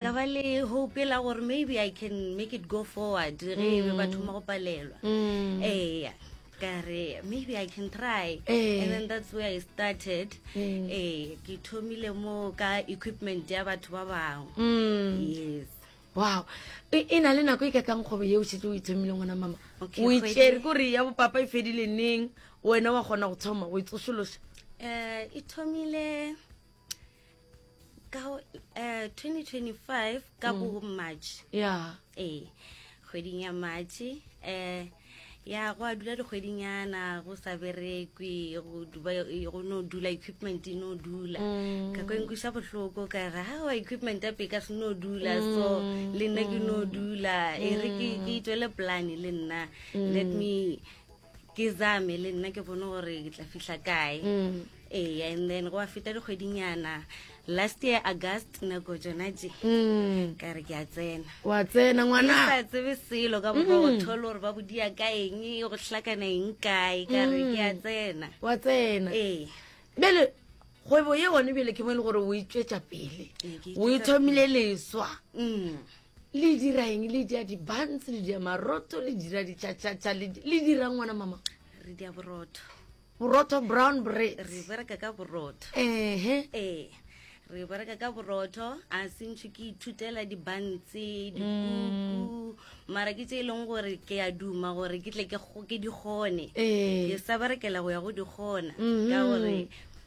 ka ba le hope la gore maybe i can make it go forward ge e be ba mm. thoma go palelwa mm. eya kare maybe i can try eh. and then that's where i started mm. eh ke thomile mo ka equipment ya batho ba bangwe mm. yes wow e, e na le nako e ka kang kgwebo ye o setse o ithomile ngwana mama o itsere kore ya bopapa e fedile neng wena wa kgona go thoma go e tsosolosa um e thomile ka uh, eh, 2025 ka mm. bo march yeah. ee kgweding ya march um eh, ya go a dula dikgwedinyana go sa berekwe go no dula equipment e no dula mm. ka kwenkwiša bohloko ka re ga wa equipment ya peka se no dula so mm. le nna ke no dula e re ke itwele plane le nna let me ke zame le nna ke bone gore ke tla fitlha kae mm. ee and then go a feta dikgwedinyana last year august nako jona je mm. ka re ke a tsena wa tsena ngwana sa tsebe selo ka boka go mm. thole gore ba bodia ka eng go tlhakana eng kae ka re ke a tsena wa tsena ee bele kgwebo ye one bele ke mo e le gore o itswetsa pele o ithomile leswa le dira eng le dia dibantse le dia maroto le dira ditšhatšhatšha le dira ngwana mama re dia borotho borotho brown bread re bereka ka borotho ehe ee re bereka ka borotho a sentšho ke ithutela dibantse dikuku mm. mara ke tse e leng gore ke a duma gore ke tle ke di kgone ee. ke sa berekela go ya go di kgona ka mm-hmm. gore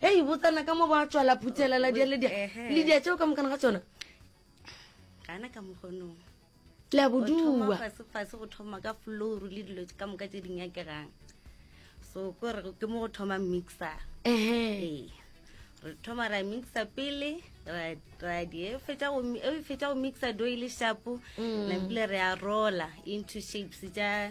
Hei, botsana ka mo ba tšwala phuthela la dia le dia. Le dia tšeo ka mokana ga tšona. Gana ka mogonong. La boduwa. Fase fase go thoma ka floor le dilo ka moka tse ding ya ke gang. So ko re ke mo go thoma mixer. Ehe. Re thoma ra mixer pele ra ra di e fetsa go e fetsa go mixer do ile shapo. Mm. La pele re a roller into shapes ja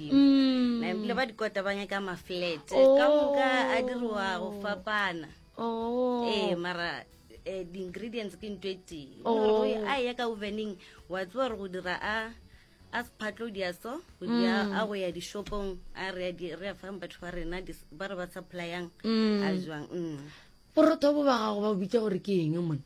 modimo mm. na ebile ba dikota ba nyaka maflat oh. ka moka a diriwa go fapana oh. ee mara eh, di-ingredients ke nto e tee oh. a ya ka ovening wa tsewa gore go dira a a sephatlo dia so go dia mm. a go ya dishopong a re ya fang batho ba rena ba re ba supplyang mm. a jwang mm. borotho bo ba gago ba bitsa gore ke eng mone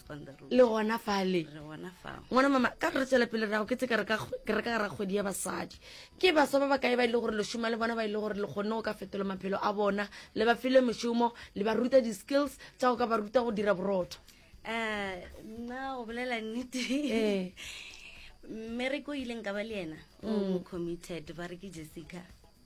le gona fale ngwana mama ka re tswela pele rago ke tse ke reka gara kgwedi ya basadi ke baswa ba ba kae ba e le gore lešoma le bona ba e le gore le kgonne go ka fetola maphelo a bona le ba file mešomo le ba ruta di-skills tsa go ka ba ruta go dira borotho eh, nna o bolela nnete eh. mmereko o ileng ka ba le ena o mm. committed ba re ke jessica